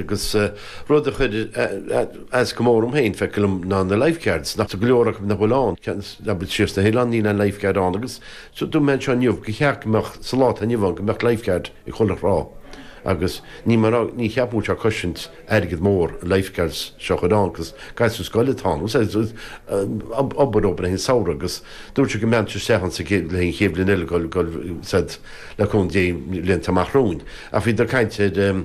agus rud a chuir as go mór dom féin, feicthe liom, ná na Lifeguards, nach go leor acu nach bhfuil ann, ceann acu siar sna hoileáin níl aon Lifeguard ann agus seo, dúirt mé anseo inniu gur cheart go mbeadh, sa lá atá inniu ann, go mbeadh Lifeguard ag chuile thrá agus ní mar a, ní cheapaim go bhfuil sé ag cosaint airgead mór, na Lifeguards seo a chur ann agus gasúir scoile atá ann agus said obair, obair fhéin Samhradh agus dúirt siad go mbeadh isteach ann sa, le linn an chéad bhliain eile go, go, said le cúnamh Dé bhlianta amach romhainn ach bhíodar ag caint ar.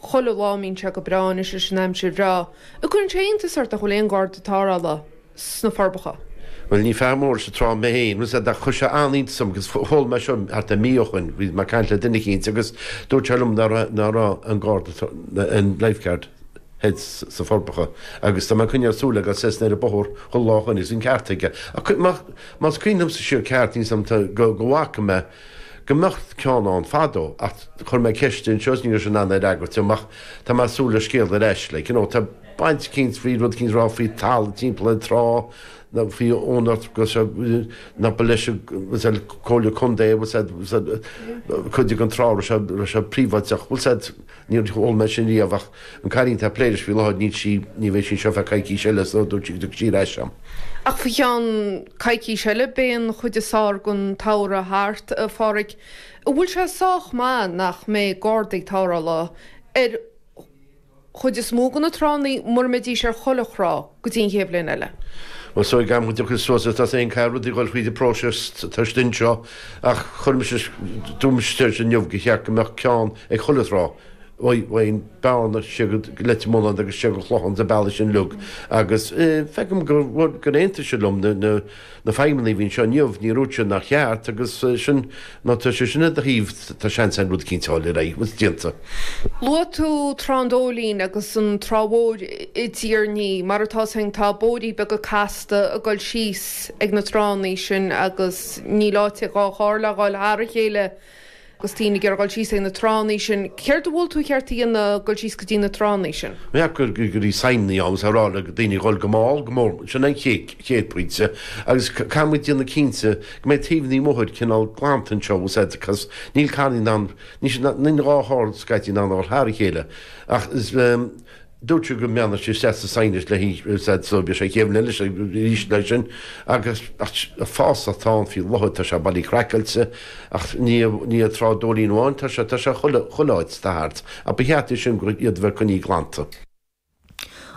Chuile lá a mbíonn sé go breá anois leis an aimsir bhreá, an gcuireann sé iontas ort nach bhfuil aon Gharda tarrthála sna Forbacha. Bhuel, ní fear mór leis an trá mé féin, rud a chuir sé an-iontas orm agus chuala mé seo thart ar mí ó shin, bhí mé ag caint le duine eicínt agus dúirt sé liom nach raibh an Garda, an Lifeguard hut sna Forbacha agus tá mé ag coinneáil súil aige seasamh ar an bóthar chuile lá ó shin agus bhí an ceart aige. Más cuimhin liomsa i gceart, níl 'fhios a'm go bhfaca mé, go mbíodh ceann ann fadó ach chuir mé ceist anseo is ní raibh sé in ann é a fhreagairt dom ach tá mé ag súil le scéal ar ais like you know tá baint eicínt faoi rud eicínt a rá faoi talamh timpeall an trá nó faoi úinéireacht go seo nach ba leis an said Comhairle Contae bhuel said said cuid den trá raibh sé raibh sé príobháideach bhuel said Níor chuala mé sin riamh ach an cailín atá ag plé leis faoi láthair, níl sí, ní bheidh sí anseo feadh coicís eile so dúirt sí go dtiocfaidh sí ar ais agam. Ach faoi cheann coicís eile beidh an chuid is fearr den tsamhradh thart, a Phádraig. An bhfuil sé sách maith nach mbeidh gardaí tarrthála ar chuid is mó de na tránna mura mbeidís ar chuile thrá? go dtí an chéad bhliain eile. Bhuel, súil agam go dtiocfaidh suas tá 'fhios a'd féin caithfidh rudaí dhul fríd an próiseas atá istigh anseo ach chuir mise dúirt mise ar sin inniu gur cheart go mbeadh ceann ag chuile thrá ó Bhearna siar go Leitir Mealláin agus siar go Clochán sa bealach sin uilig agus feicim gur aontaigh siad liom na na feidhmeannaigh a bhí anseo inniu, níor dhúirt siad nár cheart agus sin má tá siad sin ar do thaobh, tá seans ann rud éicínt a fháil ar aghaidh agus déanta. Luaigh tú Trá an Dóilín agus an Trá Mhór i dTír an Fhia, mar atá sin tá bóithrí beaga casta ag dul síos ag na tránnaí sin agus níl áit ag dhá charr le dhul thar a chéile, Agus daoine ag dul síos ag na tránnaí sin, céard a mhol tú ar cheart a dhéanamh ag dul síos go dtí na tránnaí sin? Bhuel go gcuirfí signeannaí ann agus a rá le daoine a dhul go mall, go mór, sin an chéad pointe. Agus caithfimid déanamh cinnte go mbeidh taobh na mbóithre cineál glanta anseo agus áiteacha cos, níl carranna in ann, níl dhá charr scaití in ann a dhul thar a chéile ach is, Dúirt sí go mbeadh sí sásta sainaithint le hinseacht sóirt a sé chéim lena leithéid sin arís leis sin agus fás atá ann faoi láthair. Tá sé bailithe craiceáilte ach ní ag Trá an Dóilín amháin atá sé, tá sé chuile áit. Tá thart. Ach ba cheart é sin go iad a bheith coinní glanta.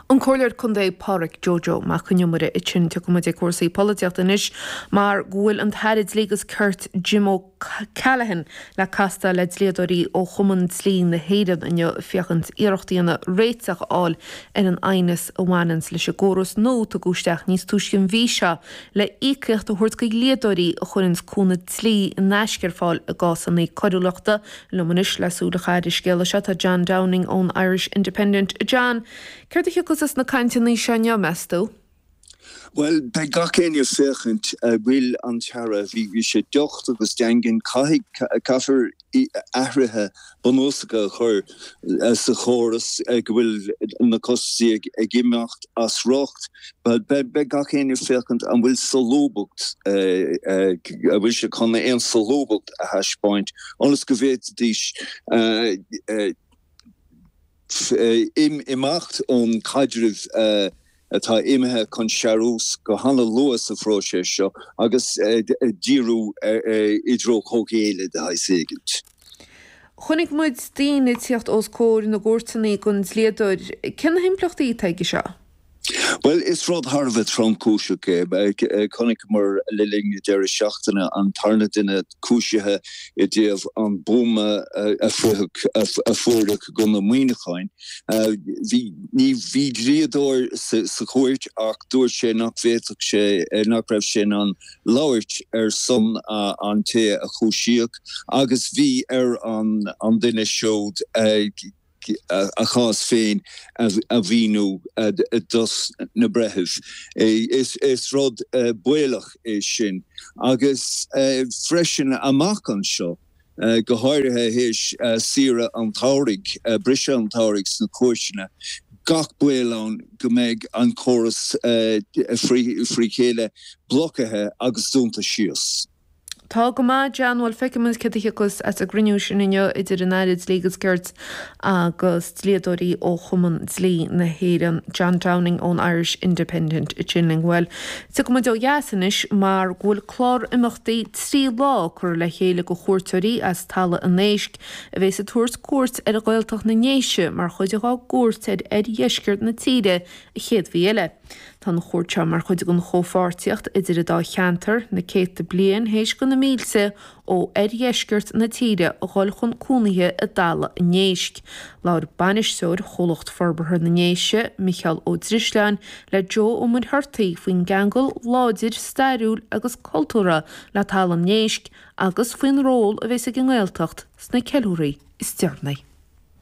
An Comhairleoir Contae Pádraig Joe Joe Mac an Iomaire, ansin, tiocfaidh muid ag cúrsaí polaitíochta anois mar go bhfuil an tAire Dlí agus Cirt Jim Ó Callaghan, le castáil le dlíodóirí ó Chumann Dlí na hÉireann inniu féachaint iarracht a dhéanamh réiteach a fháil ar an aighneas a bhaineanns leis an gcóras nua tugadh isteach níos túisce an mhí seo le íocaíocht a thabhairt chuig dlíodóirí a chuireanns cúnamh dlí in aisce ar fáil i gcásanna coiriúlachta. Liom anois le súil a chaitheamh ar an scéal seo tá John Downing ón Irish Independent. John, céard a thiocfas as na cainteanna seo inniu, meas tú? Bhuel, beidh gach éinne ag féachaint a bhfuil an tAire, bhí sé docht agus daingean, caithfidh, caithfear athruithe bunúsacha a chur sa chóras go bhfuil na costaí ag imeacht as riocht, beidh gach éinne ag féachaint an bhfuil solúbthacht, an bhfuil sé chun aon solúbthacht a thaispeáint ionas go bhféadfaidís. ii. Imeacht ón caidreamh atá imithe chun searbhas go han-luath sa phróiseas seo agus díriú i dtreo comhghéilleadh de shaghas éigin. Chonaic muid daoine ag tíocht os comhair na gcúirteanna gan dlíodóir. Cé na himpleachtaí atá aige seo? Bhuel, is rud thar a bheith tromchúiseach é. Chonaiceamar le linn na deireadh seachtaine an tarna duine cúisithe i dtaobh an buama a fuaireadh i gContae Muineacháin. Bhí dlíodóir sa chúirt ach dúirt sé nach bhféadfadh sé, nach raibh sé in ann labhairt ar son an té a cúisíodh agus bhí ar an duine siúd, a chás féin a mhíniú dos na breithimh. Is rud baolach é sin agus freisin amach anseo, go háirithe théis saoire an tsamhraidh, briseadh an tsamhraidh sna cúirteanna, gach baol ann go mbeidh an córas fré chéile blocaithe agus dúnta síos. Tá go maith, John, bhuel, feicfimid céard a thiocfas as an gcruinniú sin inniu idir an Aire Dlí agus Cirt agus dlíodóirí ó Chumann Dlí na hÉireann, John Downing ón Irish Independent ag caint linn, bhuel, gabhfaidh muid ó dheas anois mar go bhfuil clár imeachtaí trí lá curtha le chéile do chuairteoirí as Talamh an Éisc a bheas ag tabhairt cuairt ar Ghaeltacht na nDéise mar chuid dhá gcuairt ar oirdheisceart na tíre an chéad mhí eile. Tá an chuairt seo mar chuid den chomhpháirtíocht idir an dá cheantar, na céadta bliain théis do na mílte ó oirdheisceart na tíre a dhul chun cónaithe i dTalamh an Éisc. Labhair Bainisteoir Chomhlacht Forbartha na nDéise, Micheál Ó Drisleáin, le Joe Ó Muircheartaigh faoin gceangal láidir stairiúil agus cultúrtha le Talamh an Éisc agus faoin ról a bheas ag an nGaeltacht sna ceiliúraí is deireanaí.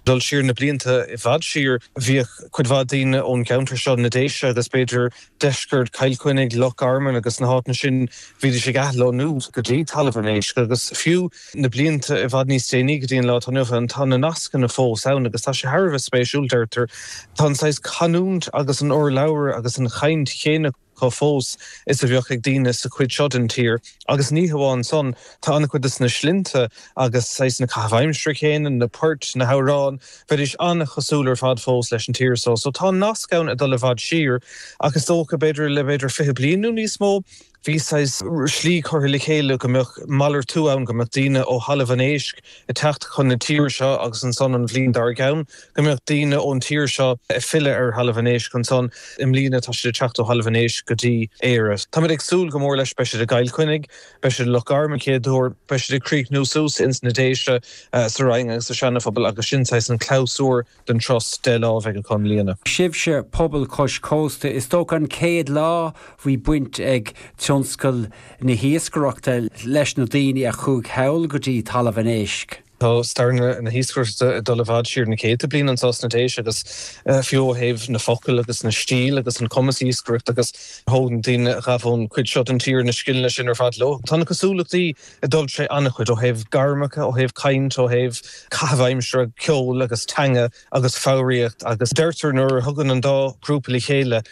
dul siar na blianta i bhfad siar, bhíodh cuid mhaith daoine ón gceantar seo, na Déise agus b'fhéidir deisceart Chill Chainnigh, Loch Garman agus na háiteanna sin, bhídís ag athlonnú go dtí Talamh an Éisc agus fiú na blianta i bhfad níos déanaí go dtí an lá atá inniu ann, tá na nascanna fós ann agus tá sé thar a bheith spéisiúil, deirtear, tá an saghas canúint agus an urlabhra agus an chaint chéanna. acu fós is a bheadh ag daoine sa chuid seo den tír agus ní hamháin san, tá an-chuid de sna slinnte agus, saghas, na caithimh aimsire chéanna, na poirt, na hamhráin, bheidís an-chosúil ar fad fós leis an tír so. So tá an nasc ann ag dul i bhfad siar ach is dócha, b'fhéidir, le b'fhéidir fiche bliain nó níos mó, bhí saghas, slí curtha le chéile go mbeadh malartú ann, go mbeadh daoine ó Thalamh an Éisc ag teacht chun na tíre seo agus ansan an bhliain dár gceann, go mbeadh daoine ón tír seo ag filleadh ar Thalamh an Éisc ansan. I mbliana tá siad ag teacht ó Thalamh an Éisc go dtí Éire. Táimid ag súil go mór leis. Beidh siad i gCill Chainnigh, beidh siad i Loch Garman an chéad uair, beidh siad ag críochnú suas ins na Déise, sa Rinn agus sa Seana-Phobal agus sin saghas an clabhsúr den turas deich lá a bheidh acu i mbliana. Sibhse pobail cois cósta, is dócha an chéad lá bhí baint ag tionscal na hiascaireachta leis na daoine a chuaigh thall go dtí Talamh an Éisc? Tá stair na hiascaireachta ag dul i bhfad siar na céadta bliain anseo sna Déise agus fiú ó thaobh na focail agus na stíl agus an cumas iascaireacht agus thóg na daoine a ghabh ón cuid seo den tír na scileanna sin ar fad leo. Tá na cosúlachtaí ag dul tré an-chuid ó thaobh gairmeacha, ó thaobh caint, ó thaobh caitheamh aimsire, ceol agus teanga agus foghraíocht agus deirtear nuair a thagann an dá ghrúpa le chéile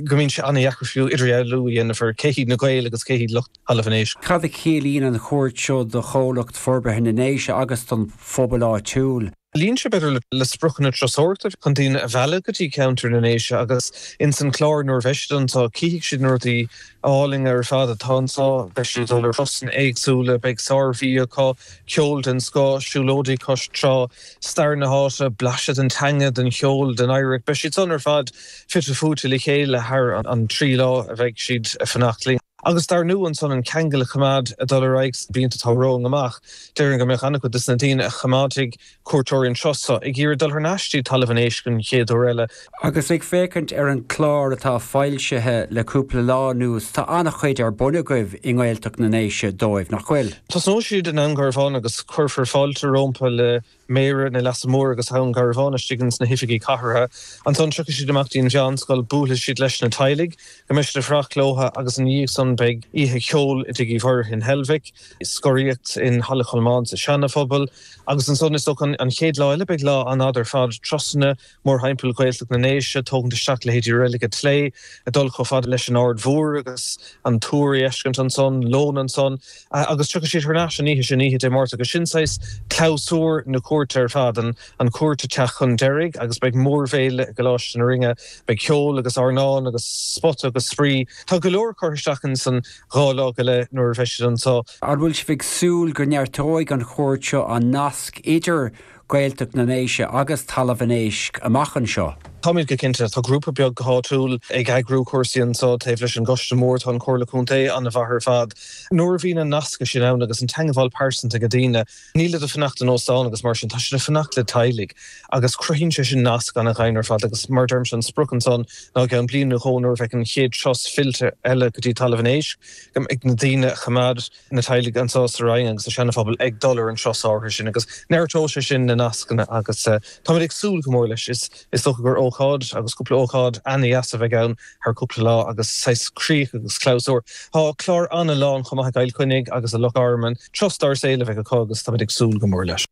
go mbíonn sé an-dheacair fiú idirdhealú a dhéanamh ar cé hiad na Gaeil agus cé hiad lucht Thalamh an Éisc. Cad a chiallaíonn an chuairt seo do Chomhlacht Forbartha na nDéise agus don phobal áitiúil? Luíonn sé b'fhéidir le spriocanna turasóireachta chun daoine a mhealladh go dtí ceantar na nDéise agus ins an chlár nuair a bheidh siad anseo cífidh siad na rudaí álainn ar fad atá anseo, beidh siad ag dul ar thurasanna éagsúla, beidh sárbhia acu, ceol den scoth, siúlóidí cois trá, stair na háite, blaiseadh den teanga, den cheol, den oidhreacht, beidh siad san ar fad fite fuaite le chéile thar an trí lá a bheidh siad ag fanacht linn. agus dar ndóigh ansan an ceangal a choimeád ag dul ar aghaidh sna blianta atá romhainn amach. Déarfainn go mbeadh an-chuid de na daoine a choimeádfaidh cuairteoirí anseo so ag iarraidh dul thar n-ais dtí Talamh an Éisc an chéad uair eile. Agus ag féachaint ar an chlár atá foilsithe le cúpla lá anuas, tá an-chuid ar bun agaibh i nGaeltacht na nDéise dóibh, nach bhfuil? Tosnóidh siad i nDún Garbhán agus cuirfear fáilte rompu le Méara an Leasa Mhóir agus Dhún Garbhán istigh ins na hoifigí cathardha. Ansan tiocfaidh siad amach dtí'n mheánscoil, buailfidh siad leis na teaghlaigh, go mbeidh siad ag fuireacht leothu agus ina dhiaidh san beidh oíche cheoil i dTigh Uí Mhuirithe in Heilbhic, scoraíocht i Halla Cholmáin sa Seana-Phobal agus ansan is dócha an chéad lá eile beidh lá an-fhada ar fad, turasanna mórthimpeall Ghaeltacht na nDéise, tógaint isteach leithéidí Reilig an tSléibhe ag dul chomh fada leis an Ard Mhór agus an túr a fheiscint ansan, lón ansan, agus tiocfaidh siad thar n-ais an oíche sin, oíche Dé Máirt, agus sin saghas clabhsúr na cuairte ar fad, an chuairt ag teacht chun deiridh agus beidh mórbhéile i gColáiste na Rinne, beidh ceol agus airneán agus spórt agus spraoi. Tá go leor curtha isteach insan dhá lá go leith nuair a bheidh siad anso. An bhfuil sibh ag súil go neartóidh an chuairt seo an nasc idir. Gaeltacht na nDéise agus Talamh an Éisc amach anseo. Táimid go cinnte. Tá grúpa beag go háitiúil ag eagrú cúrsaí anso taobh leis an gCoiste Mór. Tá an Chomhairle Contae an-mhaith ar fad. Nuair a bhíonn an nascadh sin ann agus an teangmháil pearsanta ag daoine, nílid ag fanacht in óstáin agus mar sin, tá siad ag fanacht le teaghlaigh agus cruthaíonn sé sin nasc an-dhaingean ar fad agus mar a deirimse, an sprioc ansan ná i gceann bliain nó dhó nuair a bheidh an chéad turas fillte eile go dtí Talamh an Éisc, go mbeidh na daoine a choimeád. na teaghlaigh anso sa Rinn agus sa Sean Phobal ag dul ar an turas áirithe sin agus neartóidh sé sin na nascanna agus táimid ag súil go mór leis. Is dócha gur ócáid agus cúpla ócáid an-dheas a bheidh ann thar cúpla lá agus saghas críoch agus clabhsúr. Tá clár an-lán chomh maith i gCill Chainnigh agus i Loch Garman. Turas dár saol a bheidh acu agus táimid ag súil go mór leis.